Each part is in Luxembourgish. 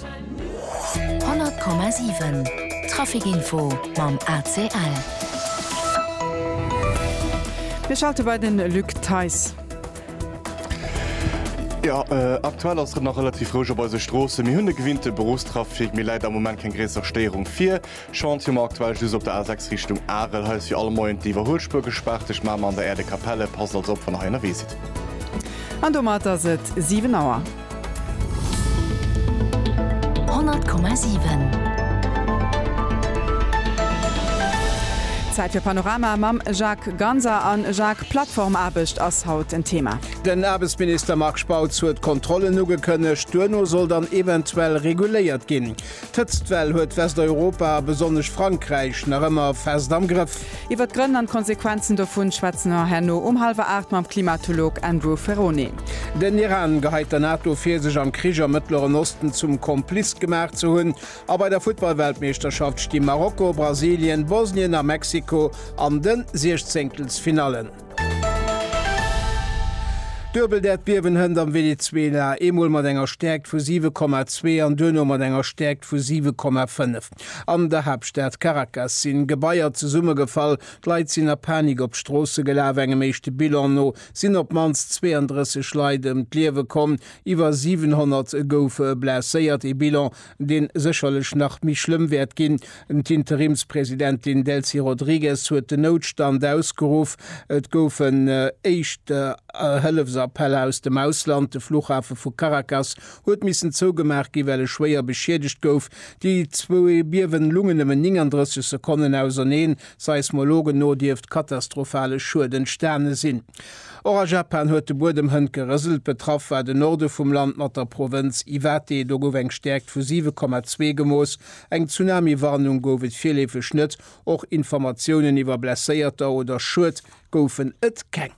100,7 Trafic-Info mam ACL. Mir schalte bei de Luc Theis. Jo, aktuell ass et nach relativ roueg op eise Stroossen. Mir hunn e gewinnte Beruffstrafic, mee läit am Moment keng gréisser Stéierung vir. Chantier um aktuell just op der A6 Richtung Arel. Hei ass fir alle Moien d'Iwwerhuelspuer gespaart. Tëscht Mamer an der Äerdekapelle. Passt also op, wann der hei ënnerwee sidd. An domat ass et 7 Auer. 100,7. Zäit fir Panorama mam Jacques Ganser. A Jacques, Plattformaarbecht ass haut en Thema. Den Aarbechtsminister Marc Spautz huet Kontrollen ugekënnegt. Duerno soll dann eventuell reguléiert ginn. D'Hëtztwell huet Westeuropa, a besonnesch Frankräich, nach ëmmer fest am Grëff. Iwwer d'Grënn an d'Konsequenzen dovun schwätzen mer herno um hallwer 8 mam Klimatolog Andrew Ferrone. Den Iran geheit der NATO vir, sech am Krich am Mëttleren Osten zum Kompliz gemaach ze hunn. A bei der Futtballweltmeeschterschaft sti Marokko, Brasilien, Bosnien a Mexiko an de Siechzéngtelsfinallen. Duebeldäerdbiewen hënt am Venezuela, eemol mat enger Stäerkt vu 7,2 an duerno mat enger Stäerkt vu 7,5. An der Haaptstad Caracas sinn Gebaier zesummegefall, d'Leit sinn a Panik op d'Stroosse gelaf. Engem éischte Bilan no sinn op d'mannst 32 Leit ëm d'Liewe komm, iwwer 700 goufe blesséiert. Ee Bilan, deen sécherlech nach méi schlëmm wäert ginn. D'Interimspresidentin Delcy Rodrigues huet den Noutstand ausgeruff, et goufen éischt Hëllefsappeller aus dem Ausland, de Fluchhafe vu Caracas huet missen zougemaach ginn, well e schwéier beschiedegt gouf. Déi zwou Biewe lungen nëmmen 39 Sekonnen auserneen. Seismologen no dierft katastrophale Schued entstane sinn. Och a Japan huet de Buedem hënt gerëselt. Betraff war de Norde vum Land mat der Provënz Iwate. Do gouf eng Stäerkt vu 7,2 gemooss. Eng Tsunami-Warnung gouf et virleefeg net. Och Informatiounen iwwer Blesséierter oder Schued goufen et keng.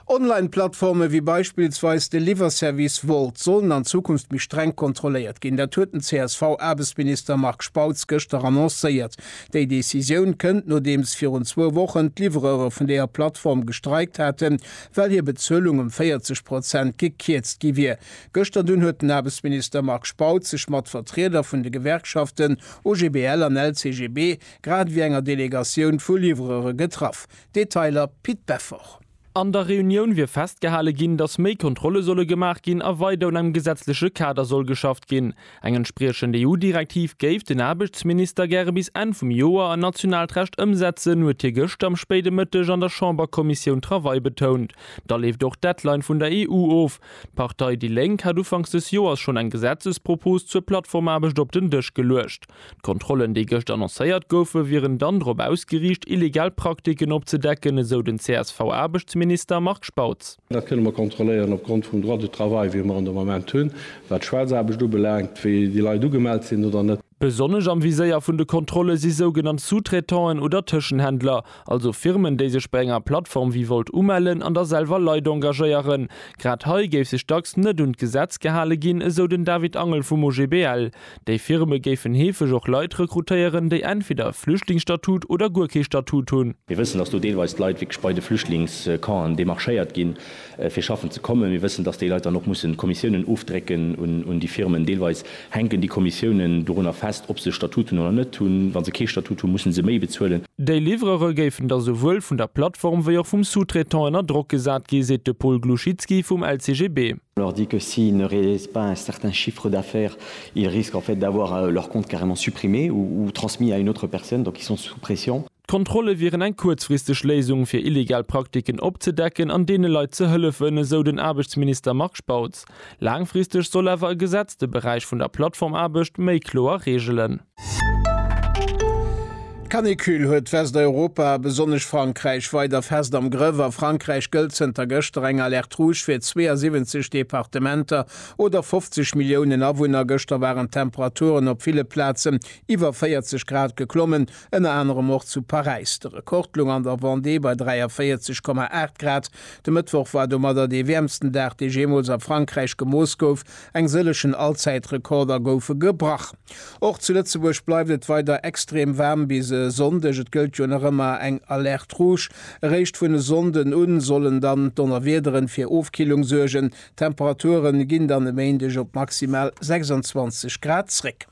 Online-Plattforme wéi beispillsweis de Liwwerservice Wolt sollen an Zukunft méi streng kontrolléiert ginn. Dat huet den CSV-Aarbechtsminister Marc Spautz gëschter annoncéiert. Déi Decisioun kënnt, nodeems virun zwou Wochen d'Livreuere vun deeër Plattform gestreikt haten, well hir Bezuelung ëm 40 Prozent gekierzt gi wier. Gëschter dunn huet den Aarbechtsminister Marc Spautz sech mat Vertrieder vun de Gewerkschaften OGBL an LCGB grad ewéi enger Delegatioun vu Livreure getraff. Detailer Pit Beffort. An der Reunioun wier festgehale ginn, datt méi Kontrolle solle gemaach ginn a weider un engem gesetzleche Kader soll geschafft ginn. Eng entspriechend EU-Direktiv géif den Aarbechtsminister gäre bis Enn vum Joer an nationaalt Recht ëmsetzen, huet hie gëschter am spéide Mëtteg an der Chamberkommissioun Travail betount. Da leeft och d'Deadline vun der EU of. D'Partei déi Lénk hat ufanks des Joers schonn eng Gesetzespropos zur Plattformaarbecht op den Dësch geluecht. D'Kontrollen, déi gëscht annoncéiert goufen, wieren dann drop ausgeriicht, illegal Praktiken opzedecken, esou den CSV-Aarbechtsminister Marc Spautz. Dat kënne mer kontrolléieren opgrond vum Droit du travail, wéi mer en de Moment hunn, wat d'Schwaarzaarbecht ubelaangt, wéi déi Leit ugemellt sinn oder net. Besonnesch am Viséier vun de Kontrolle si sougenannt Sous-traitanten oder Tëschenhändler, also Firmen, déi sech bei enger Plattform wéi Wolt umellen an da selwer Leit engagéieren. Grad hei géif sech dacks net un d'Gesetz gehale ginn, esou den David Angel vum OGBL. Déi Firme géifen heefeg och Leit rekrutéieren, déi entweder e Flüchtlingsstatut oder guer kee Statut hunn. Mir wëssen, dass do deelweis d'Leit wierklech bei de Flüchtlingscampen demarchéiert ginn, fir schaffen ze kommen. Mir wëssen, dass déi Leit dann och mussen Kommissiounen ofdrécken un déi Firmen. Deelweis hänken déi Kommissiounen dorunner fest, ob se e Statut hunn oder net hunn. Wa se kee Statut hunn, mussen se méi bezuelen. Déi Livrere géifen da souwuel vun der Plattform wéi och vum Sous-traitant ënner Drock gesat gi, seet de Paul Gluchytski vum LCGB. On leur dit que s'ils ne réalisent pas un certain chiffre d'affaires, ils risquent en fait d'avoir leur compte carrément supprimé ou transmis à une autre personne, donc ils sont sous pression. D'Kontrolle wieren eng kuerzfristeg Léisung, fir illegal Praktiken opzedecken an deene Leit ze hëllefen, esou den Aarbechtsminister Marc Spautz. Laangfristeg soll awer e Gesetz de Beräich vun der Plattformaarbecht méi kloer reegelen. D'Canicule huet Westeuropa a besonnesch Frankräich weider fest am Grëff. A Frankräich gëllt zënter gëschter eng Alerte rouge fir 72 Departementer oder 50 Milliounen Awunner. Gëschter waren d'Temperaturen op ville Plazen iwwer 40 Grad geklommen, ënner anerem och zu Paräis. De Rekord loung an der Vendée bei 43,8 Grad. De Mëttwoch war domadder dee wäermsten Dag, dee jeemools a Frankräich gemooss gouf. Eng sëllechen Allzäitrekorder goufe gebrach. Och zu Lëtzebuerg bleift et weider extrem waarm bis e Sonndeg. Et gëllt jo nach ëmmer eng Alerte Rouge. Eréischt vun e Sonnden u sollen dann d'Donnerwiederen fir Ofkillung suergen. D'Temperature ginn dann e Méindeg op maximal 26 Grad zréck.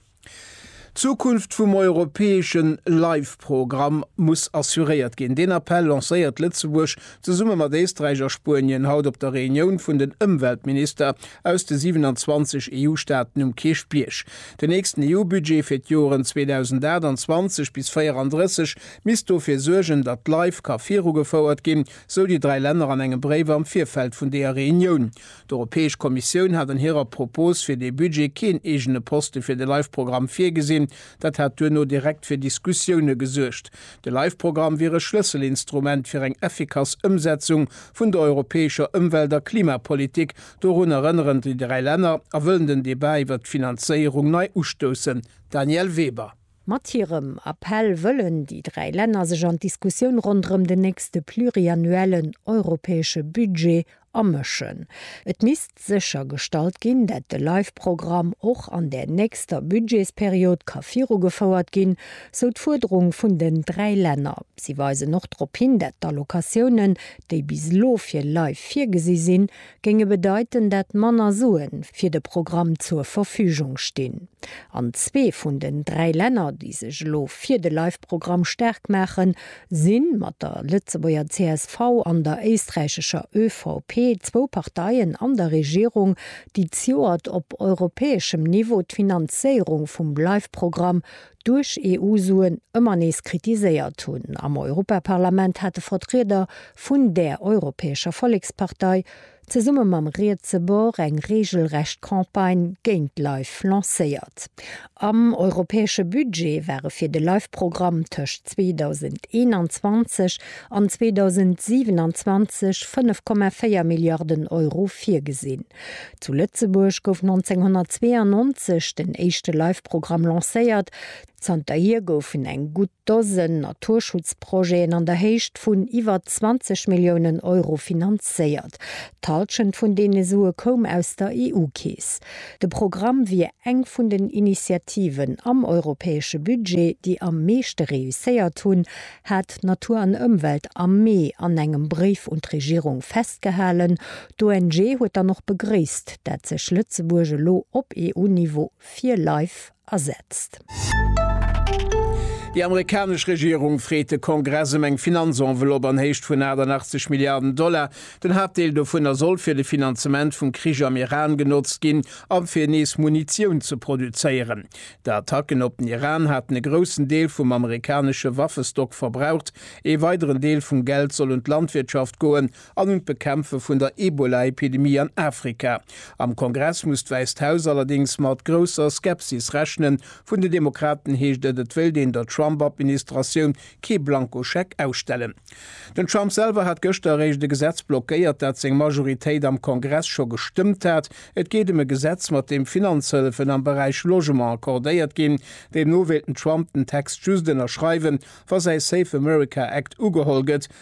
D'Zukunft vum europäeschen LIFE-Programm muss assuréiert ginn. Deen Appell lancéiert Lëtzebuerg zesumme mat Éisträich a Spuenien haut op der Reunioun vun den Ëmweltminister aus de 27 EU-Staaten um Kierchbierg. Den nächsten EU-Budget fir d'Joren 2028 bis 34 misst dofir suergen, datt LIFE ka virugefouert ginn, sou déi dräi Länner an engem Bréif am Virfeld vun deeër Reunioun. D'Europäesch Kommissioun hat an hirer Propos fir dee Budget keen eegene Poste fir de Life-Programm virgesinn. Dat hätt duerno direkt fir Diskussioune gesuergt. De Life-Programm wier e Schlësselinstrument fir eng effikass Ëmsetzung vun der europäescher Ëmwelt a Klimapolitik. Dorun erënneren déi dräi Länner a wëllen den Debat iwwert d'Finanzéierung nei ustoussen. Danièle Weber. Mat hirem Appell wëllen déi dräi Länner sech an d'Diskussioun ronderëm den nächste pluriannuellen europäesche Budget amëschen. Et misst séchergestallt ginn, dat de Life-Programm och an där nächster Budgetsperiod ka virugefouert ginn, sou d'Fuerderung vun den dräi Länner. Si weisen och drop hin, dat d'Allocatiounen, déi bis elo fir Life virgesi sinn, géinge bedeiten, dat manner Sue fir de Programm zur Verfügung stinn. An zwee vun den dräi Länner, déi sech elo fir de Live-Programm staark maachen, si mat der Lëtzebuerger csv an der éisträichescher ÖVP, zwou Parteien an der Regierung, déi ziuert op europäeschem Niveau d'Finanzéierung vum Live-Programm duerch EU-Suen ëmmer nees kritiséiert hunn. Am Europaparlament hate Vertrieder vun där Europäescher Vollekspartei zesumme mam rietse Bord eng reegelrecht Campagne géint LIFE lancéiert. Am europäesche Budget ware fir de LIFE-Programm tëscht 2021 an 2027 5,4 Milliarden Euro virgesinn. Zu Lëtzebuerg gouf 1992 den éischte Live-Programm lancéiert. Zanterhier goufen eng gutt Dosen Naturschutzprojeten an der Héicht vun iwwer 20 Milliounen Euro finanzéiert. D'Hallschent vun deene Sue koum aus der EU-Keess. De Programm wier eng vun den Initiativen am europäesche Budget, déi am meeschte reusséiert hunn, hat Natur an Ëmwelt am Mee an engem Bréif un d'Regierung festgehalen. D'ONG huet dann och begréisst, dat sech Lëtzebuerg elo op EU-Niveau fir Life asetzt. Déi amerikanesch Regierung freet de Kongress ëm eng Finanzenveloppe an Héicht vun 88 Milliarden Dollar. Den Haaptdeel dovunner soll fir de Finanzement vum Krich am Iran genotzt ginn a fir nees Munitioun ze produzéieren. D'Attacken op den Iran haten e groussen Deel vum amerikanesche Waffestock verbraucht. Ee weideren Deel vum Geld soll un d'Landwirtschaft goen. an un d'Bekämpfe vun der Ebola-Epidemie an Afrika. Am Kongress muss d'Wäisst Haus allerdéngs mat grousser Skepsis rechnen. Vun den Demokraten heescht et, et wéilt een der Trump-Administratioun kee Blankoscheck ausstellen. Den Trump selwer hat gëschter eréischt e Gesetz blockéiert, dat seng Majoritéit am Kongress scho gestëmmt hat. Et geet ëm e Gesetz, mat deem Finanzhëllefen am Beräich Logement accordéiert ginn. Deemno wéilt den Trump den Text just ënnerschreiwen, wa säi Safe America Act ugeholl gëtt,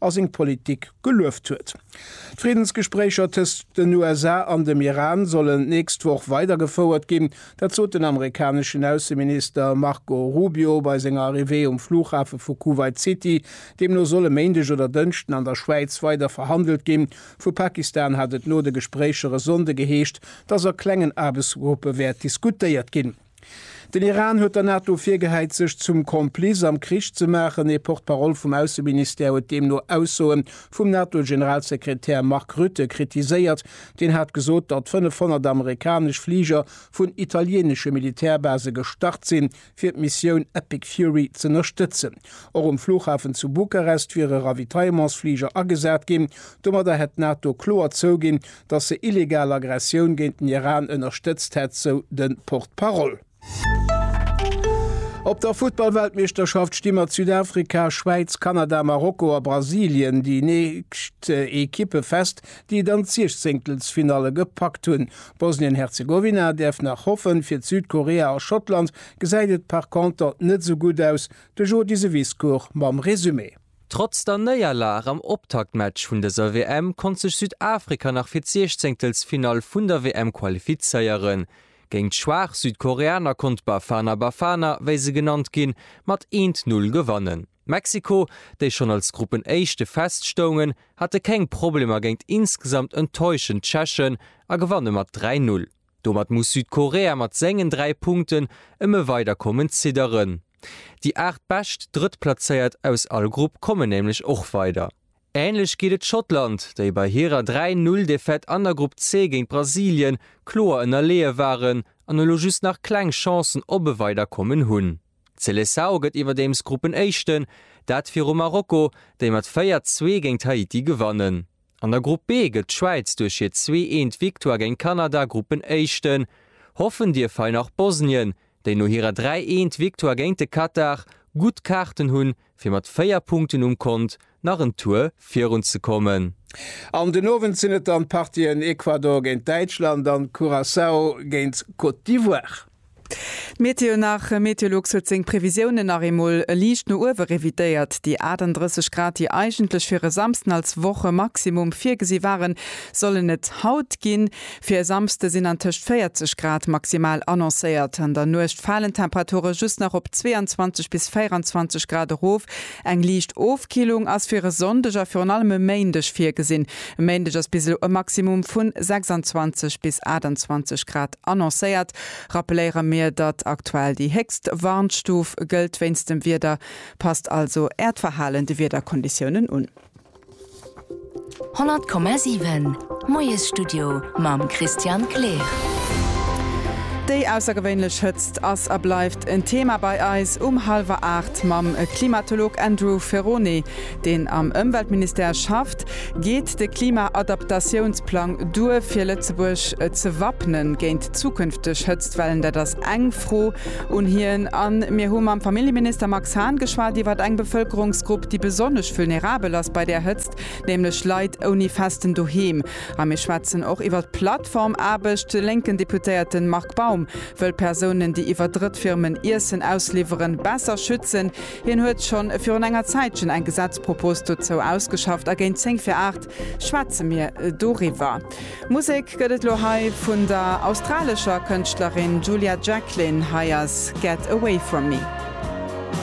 a seng Politik gelueft huet. D'Friddensgespréicher tëscht den USA an dem Iran sollen d'nächst Woch weidergefouert ginn. Dat sot den amerikaneschen Ausseminister Marco Rubio bei senger Arrivée um Flughafe vu Kuwait City. Deemno soll e Méindeg oder Dënschden an der Schwäiz weider verhandelt ginn. Vu Pakistan hat et no de Gespréicher e Sonnde geheescht, dass a klengen Aarbechtsgruppe wäert diskutéiert ginn. Den Iran huet der NATO virgehäit, sech zum Complice am Krich ze maachen. Ee Porte-parole vum Ausseministère huet deemno Aussoe vum NATO-Generalsekretär Mark Rutte kritiséiert. Deen hat gesot, datt 500 amerikanesch Fliger vun italienesche Militärbase gestart sinn, fir d'Missioun Epic Fury z'ënnerstëtzen. Och um Flughafen zu Bukarest wiere Ravitaillementsfliger agesat ginn. Domadder hätt d'NATO kloer zouginn, datt se illegal Aggressioun géint den Iran ënnerstëtzt hätt, sou de Porte-parole. Op der Futtball-Weltmeeschterschaft sti mat Südafrika, Schwäiz, Kanada, Marokko a Brasilien déi nächst Ekippe fest, déi et an d'Siechzéngtelsfinalle gepackt hunn. Bosnien-Herzegowina däerf nach hoffen. Fir d'Südkorea a Schottland gesäit et par conter net esou gutt aus. De Jody Seviscourt mam Resumé. Trotz der Néierlag am Optaktmatch vun dëser WM konnt sech Südafrika nach fir d'Siechzéngtelsfinall vun der WM qualifizéieren. Géint schwaach Südkoreaner konnt d'Bafana Bafana, wéi se genannt ginn, mat eent Null gewannen. Mexiko, déi schonn als Gruppenéischte feststoungen, hate keng Problemer géint insgesamt enttäuschend Tschechen a gewanne mat dräi Null. Domat muss Südkorea mat sengen 3 Punkten ëm e Weiderkommen zidderen. Déi 8 bescht Drëttplazéiert aus all Grupp kommen nämlech och weider. Änlech geet et Schottland, déi bei hirer 3, 0 Defaite an der Grupp C géint Brasilien kloer ënnerleeë waren an elo just nach kleng Chancen op e Weiderkommen hunn. D'Seleçao gëtt iwwerdeems Gruppenéischten, dat viru Marokko, déi mat 4, 2 géint Haiti gewannen. An der Grupp B gëtt d'Schwäiz duerch hir zwee eent Victoire géint Kanada Gruppenéischten. Hoffen dierf hei nach Bosnien, déi no hirer dräi eent Victoire géint de Katar gutt Kaarten hunn, fir mat véier Punkten um Kont nach en Tour virun ze kommen. An den Owend sinn et dann d'Partien Ecuador géint Däitschland an Curaçao géint Côte d'Ivoire. D'Meteo nach, Meteolux huet seng Previsiounen nach eemol liicht no uewe revidéiert. Déi 38 Grad, déi eigentlech fir e Samsden als Wochemaximum virgesi waren, sollen et haut ginn. Fir e Samsde sinn an tëscht 40 Grad maximal annoncéiert. An der Nuecht falen d'Temperature just nach op 22 bis 24 Grad erof. Eng liicht Ofkillung ass fir e Sonndeg a virun allem e Méindeg virgesinn. E Méindeg ass bis elo e Maximum vu 26 bis 28 Grad. Annoncéiert rappeléiere mir, datt aktuell déi héchst Warnstuf gëllt wéinst dem Wieder. Passt also Äert Verhalen de Wiederkonditiounen un. 100,7 Moiesstudio mam Christian Kleer. Déi aussergewéinlech Hëtzt ass a bleift en Thema bei eis um hallwer 8 mam Klimatolog Andrew Ferrone. deen am Ëmweltministère schafft, geet de Klimaadaptatiounsplang duer, fir Lëtzebuerg ze wappnen géint zukünfteg Hëtztwellen. Dat ass eng Fro un hien. A mir hu mam Familljeminister Max Hahn geschwat iwwer eng Bevëlkerungsgrupp, déi besonnesch vulnerabel ass bei där Hëtzt, nämlech Leit ouni festen Doheem. A mir schwätzen och iwwer d'Plattformaarbecht. De lénken Deputéierte Marc Baum wëll Persounen, déi iwwer Drëttfirmen Iessen ausliwweren, besser schützen. Hien huet schonn virun enger Zäitchen eng Gesetzpropos dozou ausgeschafft a géint zéng vir aacht schwätze mir doriwwer. Musek gëtt et elo hei vun der australescher Kënschtlerin Julia Jacklin. Hei ass Get Away From Me.